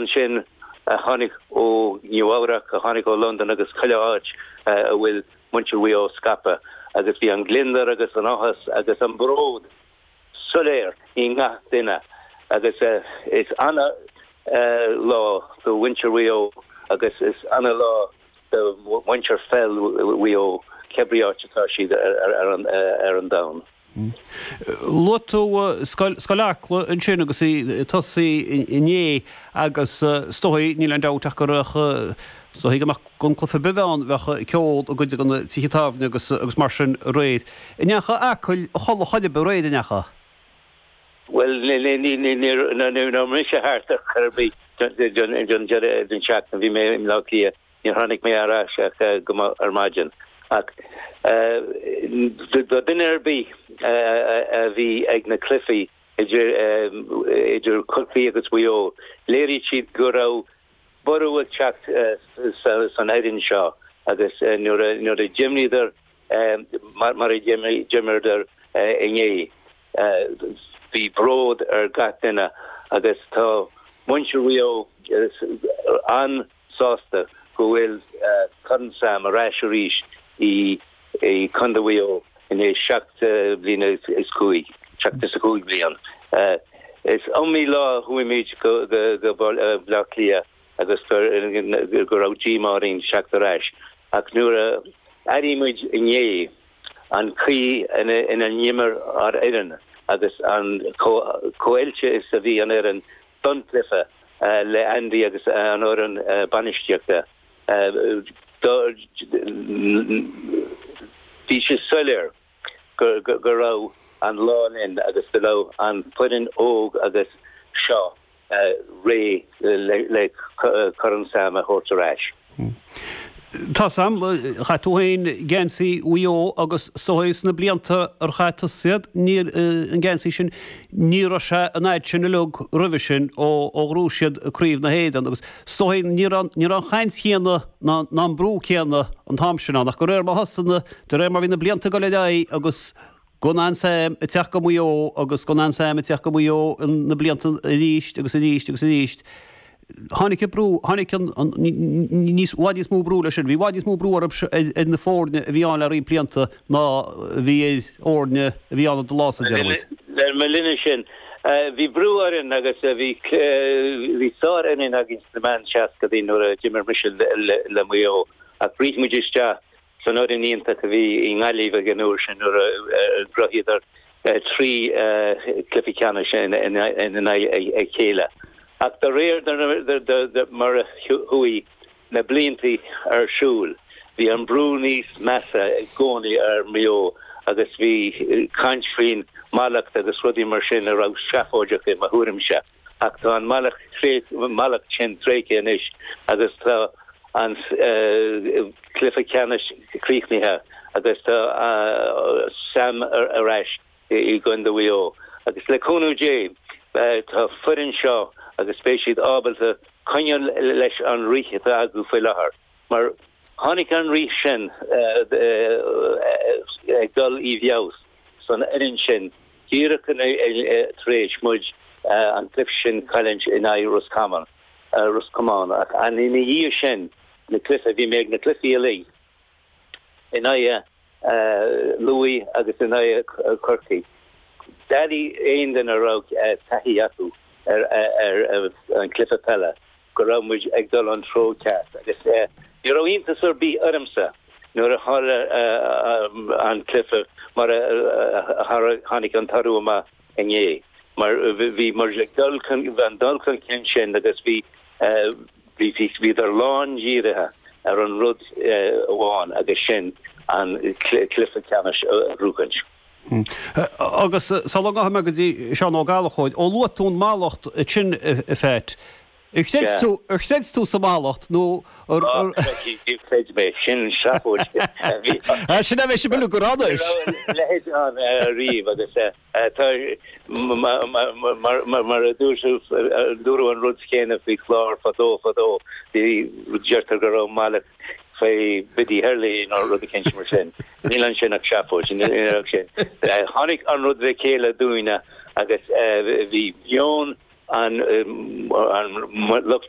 Ansin a tháinig ó Nua-Eabhrac, a tháinig ó Londain agus chuile áit a bhfuil muintir Mhaigh Eo scaipthe agus bhí an gliondar agus an áthas agus an bród soiléir i ngach duine agus is ana lá do mhuintir Mhaigh Eo agus is ana lá do mhuintir pheil Mhaigh Eo cé brí áit atá siad ar an domhan. Luaigh tú Scoil Acla ansin agus í ag tosaí inné agus is dóigh, níl aon dabht ach gur, is dóigh gan aon chluiche ar bith ann, bheadh ceol i gcuid de na tithe tábhairne agus mar sin aréir. An ndeachaigh Acaill a chodladh chor ar bith aréir, an ndeachaigh? Bhuel, ní raibh mise thart chor ar bith don deireadh den seachtain, bhí mé in mBleá Cliath. Níor tháinig mé ar ais ach go moch ar maidin ach duine ar bith a bhí ag na cluichí idir Corcaigh agus Mhaigh Eo, léirigh siad go raibh borradh ag teacht san fhoireann seo agus nuair a d'imríodar mar a d'imríodar inné, bhí bród ar gach duine agus tá muintir Mhaigh Eo an-mhór sásta go bhfuil Corn Sam ar ais arís i gCondae Mhuigh Eo i ndiaidh seacht bliana is cúig, seacht is a cúig bliain. Is iomaí lá a chuaigh muid go Bleá Cliath agus go raibh díomá orainn teacht ar ais ach nuair a airigh muid inné an chaoi inar imir ár bhfoireann agus chomh hoilte is a bhí an fhoireann don chluiche le Andy agus an fhoireann bainistíochta ba soiléir go raibh an lá linn agus go raibh an foireann óg agus seo réidh le Corn Sam a thabhairt ar ais. Hm. Tá sam. Chaith tú féin geansaí Mhaigh Eo agus is dóigh sna blianta ar chaith tusa iad, níor, an geansaí sin, ní raibh sé an fhad sin uilig roimhe sin ó ghnóthaigh siad craobh na hÉireann agus is dóigh ní raibh, ní raibh an chaint chéanna ná, ná an brú céanna an t-am sin ann ach de réir mar thosaigh na, de réir mar bhí na blianta ag dul ar aghaidh agus Gan aon Sam ag teacht go Maigh Eo agus gan aon Sam ag teacht go Maigh Eo na blianta arís agus arís agus arís. Tháinig an brú, tháinig an, an, níos, bhfad níos mó brú leis sin. Bhí bhfad níos mó brú orthu seo ar, ar na foirne a bhí ann le roinnt blianta ná a bhí ar fhoirne a bhí ann an lá, a déarfadh muid. le mo linnse, bhí brú orainn agus bhí, bhí sárfhoireann againn sna meán seascadaí nuair a d'imir mise le, le, le Maigh Eo ach bhris muid isteach Sin foireann iontach a bhí i nGaillimh ag an uair sin nuair a ghnóthaíodar trí chluiche ceannais in aghaidh a chéile ach de réir mar a chuaigh na blianta ar siúl bhí an brú níos measa i gcónaí ar Mhaigh Eo agus bhí caint faoin mhallacht agus rudaí mar sin a raibh seafóideach i mo thuairimse. Ach tá an mallacht sin tréigthe anois agus tá an cluiche ceannais críochnaithe agus tá Sam ar ais i gcontae Mhaigh Eo agus le cúnamh Dé tá foireann seo agus beidh siad ábalta coinneáil leis an rith atá acu faoi láthair. Mar tháinig an rith sin ag dul i bhfeabhas san fhoireann sin díreach tar éis muid an cluiche sin a chailliúint in aghaidh Ros Comáin ach ina dhiaidh sin na cluiche, bhí mé ag na cluichí uilig in aghaidh Lú agus in aghaidh Chorcaí, d'aireodh aon duine a raibh taithí acu ar an cluiche peile. go raibh muid ag dul an treo ceart agus ní raibh iontas ar bith ormsa nuair a tharla an cluiche mar a tháinig an toradh amach inné mar bhí muid ag dul chun an dul chun cinn sin agus bhí bhíodar lán dírithe ar an rud amháin agus sin an cluiche ceannais a bhuachaint. Hm. Agus sula gcaithfidh mé go dtí Seán Ó Gallchobhair, ó luaigh tú an mallacht sin, a Pheait, ar chreid tú, ar chreid tú sa mhallacht nó ar, ar. Á, níor chreid mé, sin seafóid. Á, sin a bheidh sibh uilig ag rá anois. Ní raibh a leithéid ann riamh agus tá, mar a dúirt tú, dúradh an rud céanna faoi Chlár fadó fadó, deirtear go raibh mallacht faoi Biddy Early nó rud eicínt mar sin. Níl ansin ach seafóid. Tháinig an rud le chéile dúinne agus bhí meon an lucht